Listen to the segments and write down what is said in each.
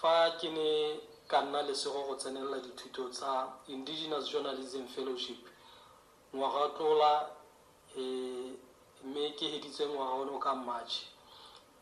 Fa ke ne ka nna lesego go tsenelela dithuto tsa Indigenous Journalism Fellowship ngwaga o tlola e mme ke heditse ngwaga ono ka March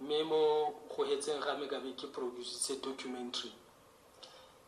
mme mo go hetseng ga me ka be ke produsitse documentary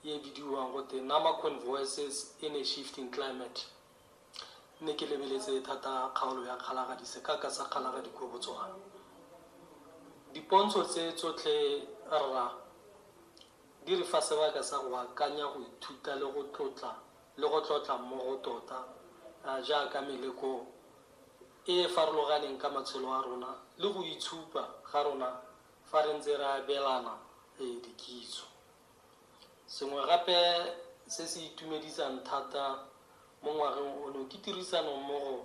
e bidiwang gote Nama Convoices in a Shifting Climate. Nne ke lebeletse thata kgaolo ya Kgalagadi sekaka sa Kgalagadi ko Botswana. Dipontsho tse tsotlhe rra di re fa sebaka sa go akanya, go ithuta le go tlotla le go tlotla mmogo tota jaaka meleko e e farologaneng ka matshelo a rona le go itshupa ga rona fa re ntse re abelana dikitso. Sengwe gape se se itumedisang thata mo ngwageng ono ke tirisanommogo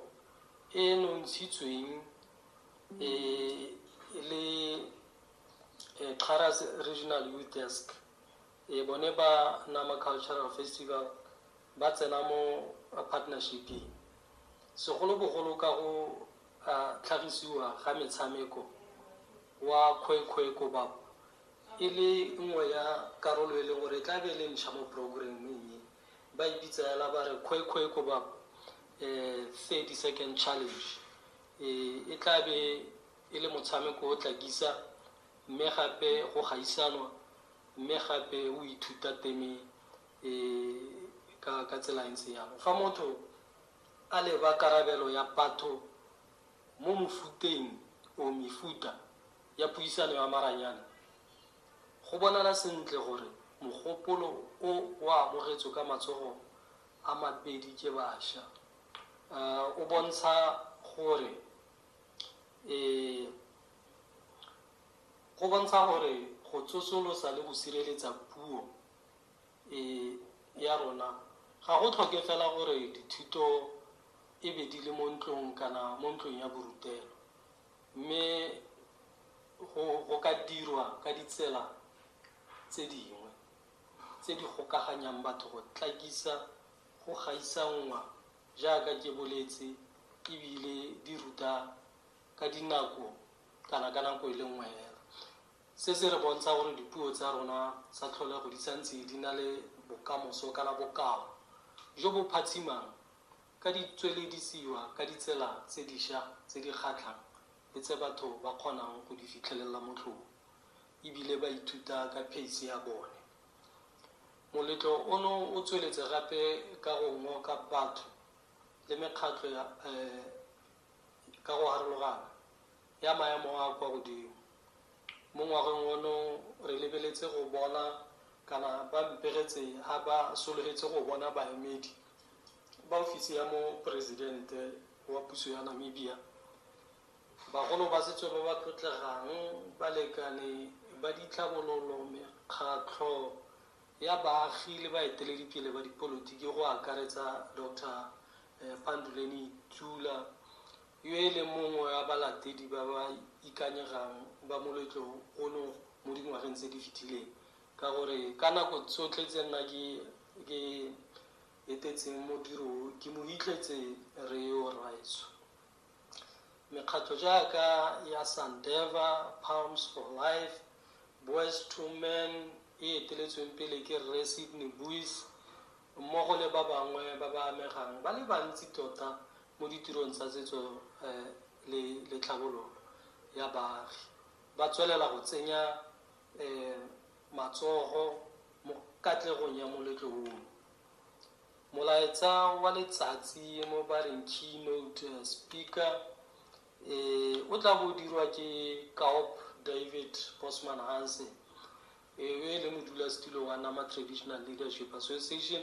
e e nontshitsweng e le Xaras Regional Youth Desk e bone ba Nama Cultural Festival ba tsena mo partnership-eng segolobogolo ka go tlhagisiwa ga metshameko wa Khwekhwe Kobab E le nngwe ya karolo e leng gore e tla be e le ntšha mo progeremeng e, ba e bitsa fela ba re Khoi Khoi Kobab 30 Second Challenge. E e tla be e le motshameko o o tla kisa mme gape go gaisanwa mme gape o ithuta teme e ka tsela e ntse jalo. Fa motho a leba karabelo ya patho mo mofuteng or mefuta, ya puisano ya maranyane, go bonala sentle gore mogopolo o o amogetswe ka matsogo a mabedi ke basha. Uh, o bontsha gore eh, go bontsha gore go tsosolosa le go sireletsa puo eh, ya rona ga go tlhoke fela gore dithuto e be di le mo ntlong kana mo ntlong ya borutelo Mme go ka dirwa ka ditsela tse dingwe tse di gokaganyang batho go tlakisa go gaisanngwa jaaka ke boletse e bile di ruta ka dinako kana ka nako e le nngwe hela. Se se re bontsha gore dipuo tsa rona tsa tlholego di santse di na le bokamoso kana bokao jo bo phatshimang ka di tsweledisiwa ka ditsela tse disha tse di kgatlhang le tse batho ba kgonang go di fitlhelelela motlhofo e bile ba ithuta ka pheisi ya bone. Moletlo ono o tsweletse gape ka go ngoka batho le mekgatlho ya ka go harologana ya maemo a a kwa godimo. Mo ngwageng ono re lebeletse go bona kana ba mpegetse a ba sologetse go bona baemedi ba ofisi ya moporesidente wa puso ya namibia bagolo ba setso ba ba tlotlegang balekane ba ditlhabololo mekgatlho ya baagi le baeteledipele ba dipolotiki go akaretsa dr eh, panduleni tsula yo e leng mongwe wa balatedi ba ba ikanyegang ba moletlo ono mo dingwageng tse di fetileng ka gore ka nako tsotlhe tse nna ke Etetseng modiro o, ke mo hitlhetse re yo raetsho. Mekgatlho jaaka ya Sandeva, Palms for Life, Boys to Men e eteletsweng pele ke Rre Sydney Buys mmogo le ba bangwe ba ba amegang ba le bantsi tota mo ditirong tsa setso le tlhabololo ya baagi ba tswelela go tsenya matsogo mo katlegong ya moletlo ono. Molaetsa wa letsatsi mo bareng keynote eh, speaker eh, o tla bo dirwa ke Kaup David Bosman Hansen e e le modulasetilo wa Nama Traditional Leadership Association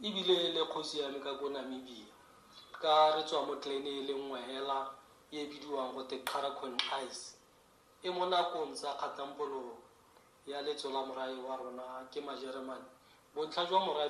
ebile e le kgosi ya me ka ko Namibia ka re tswa mo tlene e le nngwe hela e bidiwang go tekgara con ice E Mo nakong tsa kgatampololo ya letso la morae wa rona ke Majeremane, bontlha jwa morafe